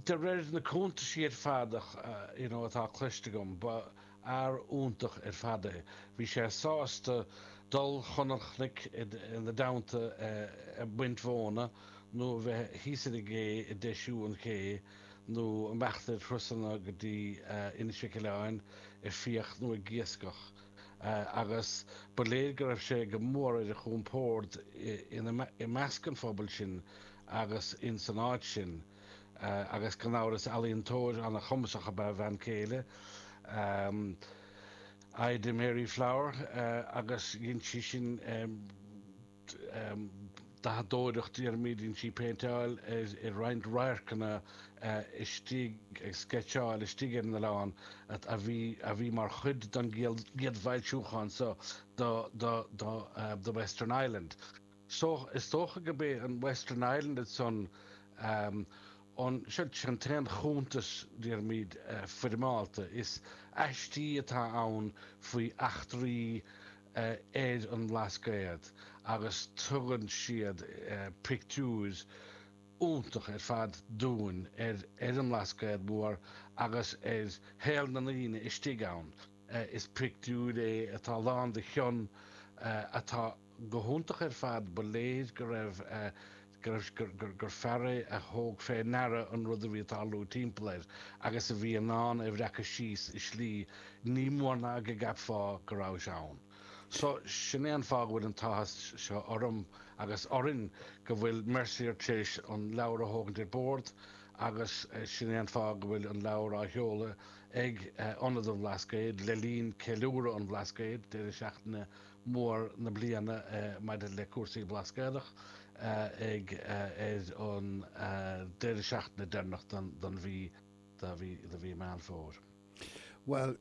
De réir na cuntaisí ar fad atá cloiste agam, ba fhear iontach ar fad é. Bhí sé sásta dul chun an chnoic ina dteannta ag baint mhóna, nó a bheith thíos ar an gcé ag deisiú an ché, nó imeacht ar thurasanna go dtí Inis Mhic Uibhleáin ag fiach nó ag iascach. Agus ba léir go raibh sé go mór ar a chompord i measc an phobail sin. agus insan áit sin agus gan amhras ealaíontóir ana-chumasach ab ea a bhean céile, Ida Mary Flower, agus dhein sí sin dathadóireacht, déarfaimid, dhein sí péinteáil ar roinnt radharcanna istigh, ag sceitseáil istigh ar an oileán, a bhí mar chuid den gcéad bhfoilsiúchán seo de The Western Island. So is dócha go b'é an Western Island ansan an t-aon chuntas, déarfaimid, foirmeálta is aistí atá ann faoi eachtraí ar an mBlascaod agus tugann siad pictiúr iontach ar fad dúinn ar an mBlascaod Mór agus ar shaol na ndaoine istigh ann. Is pictiúr é atá lán de chion, atá. Go hiontach ar fad, ba léir go raibh, go raibh, gur fear é a thóg fé ndeara an rud a bhí ag tarlú timpeall air agus a bhí in ann é a bhreacadh síos i slí nach mór ná go gceapfá go raibh sé ann. So, sin é an fáth go bhfuil an t-áthas seo orm agus orainn go bhfuil Mercier tar éis an leabhar a thógaint ar bord agus sin é an fáth go bhfuil an leabhar á sheoladh ag Ionad an Bhlascaoid le linn Ceiliúradh an Bhlascaoid deireadh seachtaine mór na bliana maidir le cúrsaí Blascaodach ag ar an deireadh seachtaine deireanach den mhí de mhí Meán Fómhair. Bhuel,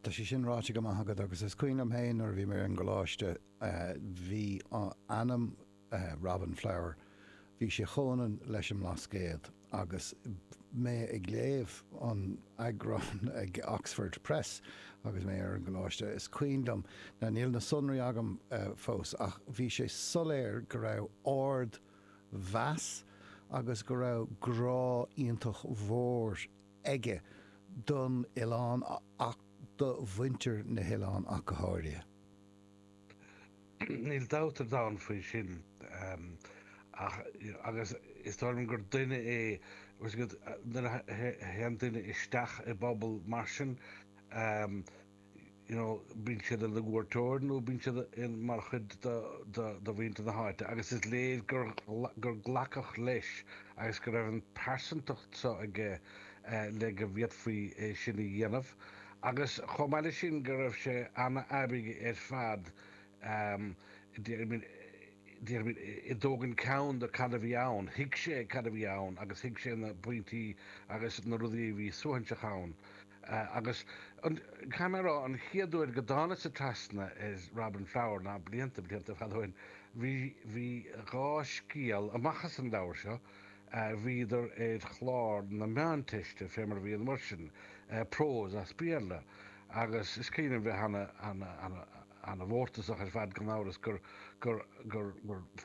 tá sé sin ráite go maith agat agus is cuimhin liom féin nuair a bhí mé ar an gcoláiste, bhí ainm, Robin Flower, bhí sé chomhionann leis an mBlascaod. Agus mé ag léamh an eagráin ag Oxford Press agus mé ar an gcoláiste, is cuimhin liom, now níl na sonraí agam fós, ach bhí sé soiléir go raibh ardmheas agus go raibh grá iontach mhór aige don oileán ach do mhuintir na hoileáin ach go háirithe. Níl dabht ar domhan faoi sin agus is dóigh liom gur duine é nuair a théann duine isteach i bpobal mar sin, bíonn sé ina chuairteoir nó bíonn sé mar chuid de mhuintir na háite agus is léir gur glacadh leis agus go raibh an phearsantacht seo aige le go bhféadfaí é sin a dhéanamh. Agus chomh maith leis sin go raibh sé an-aibigh ar fad, déarfaimid ag tógaint ceann de cad a bhí ann, thuig sé cad a bhí ann agus thuig sé na pointí agus na rudaí a bhí suaithinseach ann. Agus caithfidh mé a rá, an chéad uair go dtánasa trasna ar Robin Flower, ná blianta, blianta ar fad ó shin, bhí bhí dhá scéal amach as an leabhar seo, a bhíodar ar chlár na Meánteiste, fé mar a bhí an uair sin, prós as Béarla, agus is cuimhin liom bheith an-mhórtasach ar fad gan amhras gur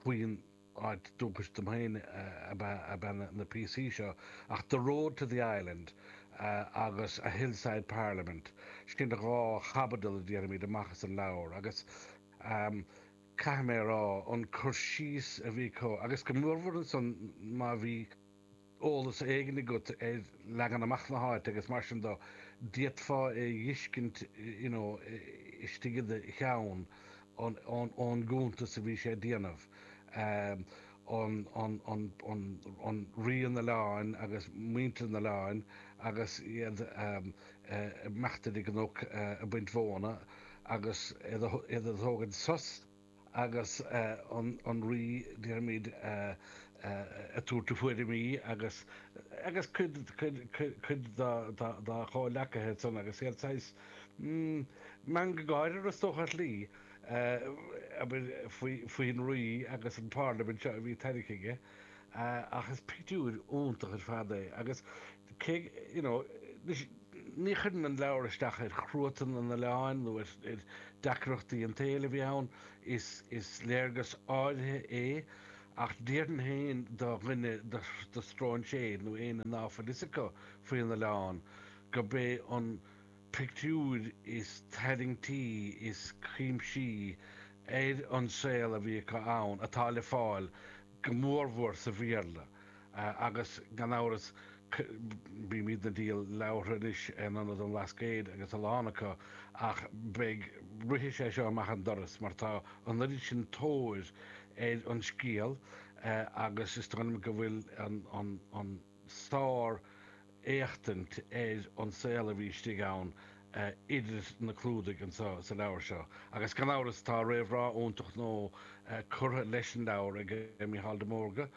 faoin áit dúchais dom féin ab ea na píosaí seo, ach The Road to the Island agus A Hillside Parliament, sin dhá chaibidil déarfaimid amach as an leabhar, agus. caithfidh mé a rá, an cur síos a bhí acu, agus go mórmhór ansan má bhí eolas éigin agat ar leagan amach na háite agus mar sin dó, d'fhéadfá é a dh'fhiscint you know istigh i do cheann ón gcuntas a bhí sé a déanamh, an, an, an, an, an, Rí an Oileáin agus muintir an Oileáin agus iad a, imeacht ar an gcnoc ag baint mhóna agus iad ag tógaint sos agus an rí, déarfaimid, ag tabhairt a thuairimí agus agus cuid cuid dá chomhleacaithe ansan agus iad saghas, mm, meangadh gáire, is dócha, ar shlí, abair, faoi faoin rí agus an pharlaimint seo a bhí tarraingthe aige. ach is pictiúr iontach ar fad é agus cé you know anois ní chuireann an leabhar isteach ar chruatan an oileáin nó ar ar deacrachtaí an tsaoil a bhí ann is is léargas áirithe é ach déarfainn féin do dhuine do do stróinséir nó éinne ná fuil fhios acu faoin oileán gurb é an pictiúr is tarraingtí is cuimsithí ar an saol a bhí acu ann atá le fáil go mórmhór sa Bhéarla agus gan amhras bímid ag díol leabhartha anois in ionad an Bhlascaoid agus a lán acu ach beidh rithfidh sé seo amach an doras mar tá an oiread sin tóir ar an scéal agus is dóigh liom go bhfuil an. sár-éachtaint ar an saol a bhí istigh ann idir na clúdaigh anso sa leabhar seo. Agus gan amhras tá réamhrá iontach nua curtha leis an leabhar ag Micheál de Mórdha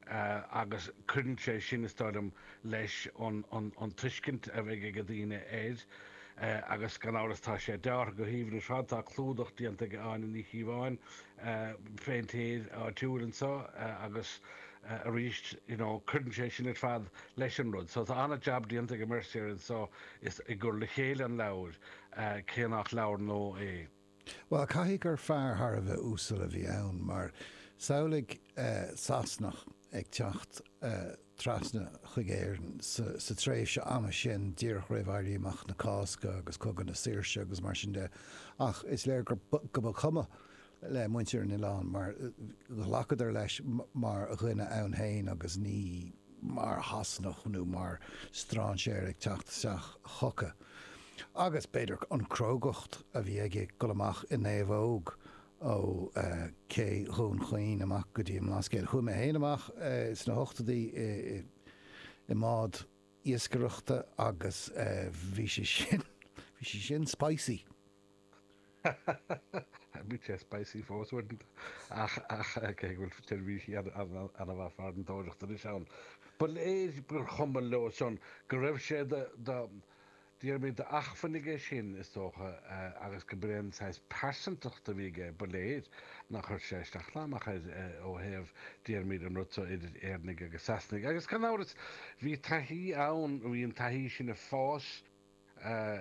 agus cuireann sé sin, is dóigh liom, leis an tuiscint a bheidh ag daoine air. Agus gan amhras tá sé deartha go haoibhinn ar fad. Tá clúdach déanta ag Áine Ní Chíobháin, péintéir áitiúil, anso agus. eh, arís, you know, cuireann sé sin ar fad leis an rud. So tá ana jab déanta ag Mercier anso i gcur le chéile an leabhair, eh, cé nach leabhar nua é. Bhuel, caithfidh gur fear thar a bheith uasal a bhí ann, mar samhlaigh eh, Sasanach ag teacht eh, trasna chuig Éirinn sa, sa tréimhse ama sin, díreach roimh Éirí Amach na Cásca agus Cogadh na Saoirse agus mar sin de. Ach is léir go, go mba chuma le muintir an oileáin mar ghlacadar leis mar dhuine ann féin agus ní mar Shasanach nó mar strainséir ag teacht isteach chucu. Agus, b'fhéidir, an crógacht a bhí aige ag dul amach i naomhóg ó ché Dhún Chaoin amach go dtí an mBlascaod. Chuaigh mé féin amach sna hochtóidí i mbád iascaireachta agus bhí sé sin, bhí sé sin spicy! Bíonn sé spicy fós uaireanta ach cé go bhfuil seirbhísí ana-mhaith farantóireachta anois ann. Ba léir gur chuma leosan, go raibh sé de, déarfaimid, d'acmhainn aige sin, is dócha, agus go mb'é an saghas pearsantacht a bhí aige, ba léir nár chuir sé isteach ná amach air ó thaobh, déarfaimid, an rud so idir Éireannaig agus Sasanaig. Agus gan amhras, bhí taithí ann, bhí an taithí sin ag fás.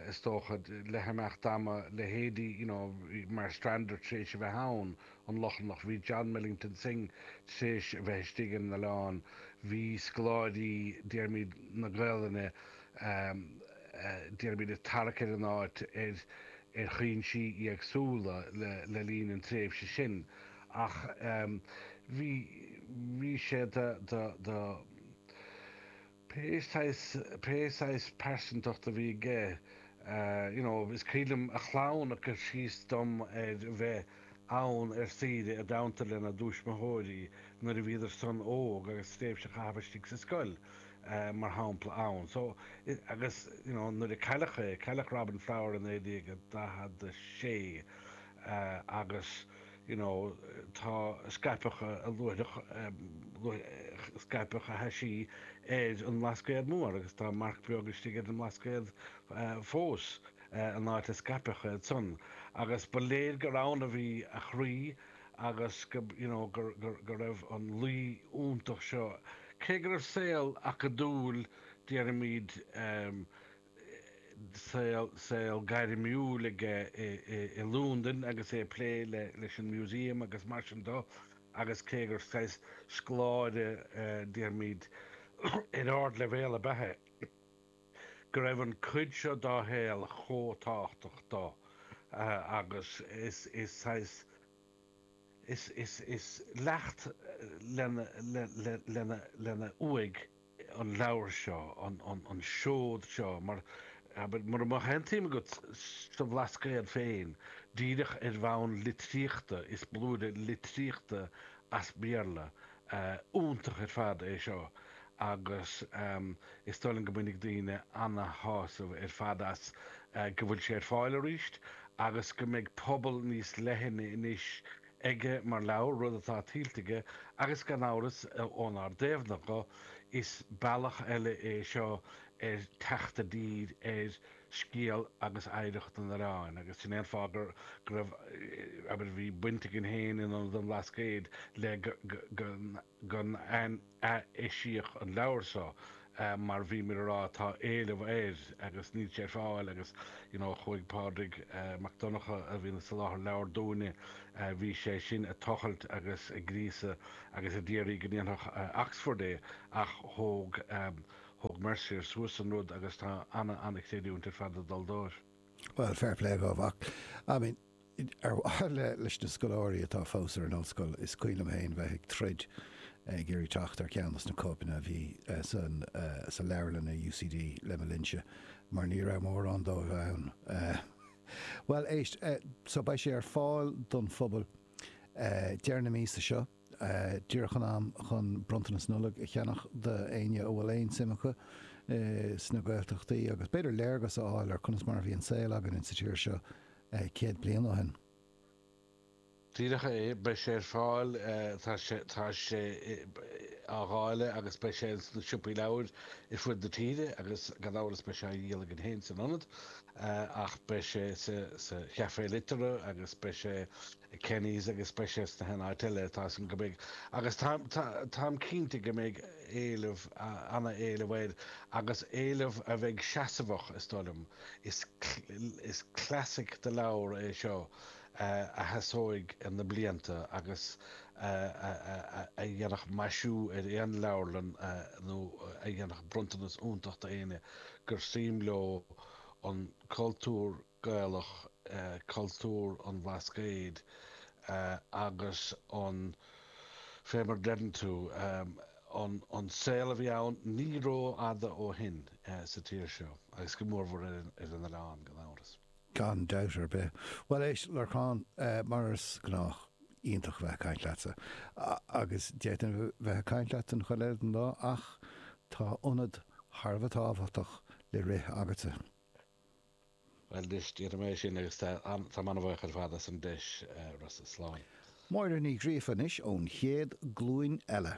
is dócha, le himeacht ama, leithéidí you know Marstrander tar éis a bheith ann, an Lochlannach, bhí John Millington Synge tar éis a bheith istigh ar an oileán, bhí scoláirí, déarfaimid, na Gaolainne, déarfaimid, ag tarrac ar an áit ar ar chúinsí éagsúla le le linn an tréimhse sin ach bhí bhí sé de de de pé saghas, pé saghas pearsantacht a bhí aige, you know, is cuimhin liom a chlann ag cur síos dom ar a bheith ann ar saoire i dteannta lena dtuismitheoirí nuair a bhíodarsan óg agus tréimhse a chaitheamh istigh sa scoil, mar shampla, ann. So, agus, you know, nuair a cailleadh é, cailleadh Robin Flower i 1946, agus you know do scaipeadh a luaithreach scaipeadh a thaisí ar an mBlascaod Mór agus tá marc beag istigh ar an mBlascaod fós an áit a scaipeadh iad san agus ba léir gur ann a bhí a chroí agus go you know gur gur go raibh an luí iontach seo cé go raibh saol acadúil déarfaimid saol gairmiúil aige i Londain agus é ag plé leis an Museum agus mar sin de agus cé gur saghas scoláire déarfaimid ar ardleibhéal ab ea é, go raibh an cuid seo dá shaol chomh tábhachtach do agus is saghas is leacht lena uaigh. an leabhar seo, an seod seo, mar, abair, mura mbeadh aon tsuim agat sa Bhlascaod féin, díreach ar bhonn litríochta, is blúire litríochta as Béarla iontach ar fad é seo agus is dóigh liom go mbainfidh daoine ana-shásamh ar fad as, go bhfuil sé ar fáil arís agus go mbeidh pobal níos leithne anois aige mar leabhar, rud atá tuillte aige agus gan amhras ónár dtaobhna dhe, is bealach eile é seo ar theacht i dtír ar scéal agus oidhreacht an oileáin agus sin é an fáth go raibh, abair, bhí baint againn féin in Ionad an Bhlascaoid le go gur ath-eisíodh an leabhar seo mar bhíomar á rá tá éileamh air agus níl sé ar fáil agus you know chuaigh Pádraig Mac Donnacha a bhíonn ag soláthar leabhar dúinne bhí sé sin ag tochailt agus ag gríosadh agus ag iarraidh go ndéanfadh Oxford é ach thóg thóg Mercier suas an rud agus tá ana ana chreidiúint ar fad ag dul dóibh. Well fair play dhóibh ach I mean. Ar mhaithe leis na scoláirí atá fós ar an ollscoil, is cuimhin liom féin bheith ag troid ag iarraidh teacht ar cheann de na cóipeanna a bhí sa leabharlann i UCD le mo linnse, mar ní raibh mórán díobh ann. Bhuel, éist, so beidh sé ar fáil don phobal deireadh na míosa seo. díreach in am chun bronntanas Nollag a cheannach d'éinne a bhfuil aon suim acu sna Gaeltachtaí agus b'fhéidir léargas a fháil ar conas mar a bhí an saol againn in sa tír seo céad bliain ó shin. Díreach é, beidh sé ar fáil, tá sé á dháileadh agus beidh sé sna siopaí leabhair ar fud na tíre agus gan amhras beidh sé á dhíol againn féin san Ionad ach beidh sé sa Chafé Liteartha agus beidh sé i Kenny's agus is breá é sna háiteanna eile atá san go mbeidh agus táim cinnte go mbeidh éileamh, ana-éileamh air agus éileamh a bheidh seasamhach is dóigh liom. Is classic de leabhar é seo a sheasóidh na blianta agus a dhéanfadh maisiú ar aon leabharlann nó a dhéanfadh bronntanas iontach do éinne gur suim leo an cultúr Gaelach, cultúr an Bhlascaoid agus fé mar a deireann tú, an saol a bhí ann ní rófhada ó shin sa tír seo, agus go mórmhór ar an oileán, gan amhras. Gan dabht ar bith. Bhuel, éist, a Lorcáin, mar is gnách, iontach a bheith ag caint leatsa. Agus d'fhéadfainn a bheith ag caint leat an chuid eile den lá ach tá ionad thar a bheith tábhachtach le rith agatsa. Bhuel, anois, déanfaidh mé é sin agus tá mé an-bhuíoch ar fad as an deis, a Rossa. Slán. Máire Ní Ghríofa anois ón chéad glúin eile.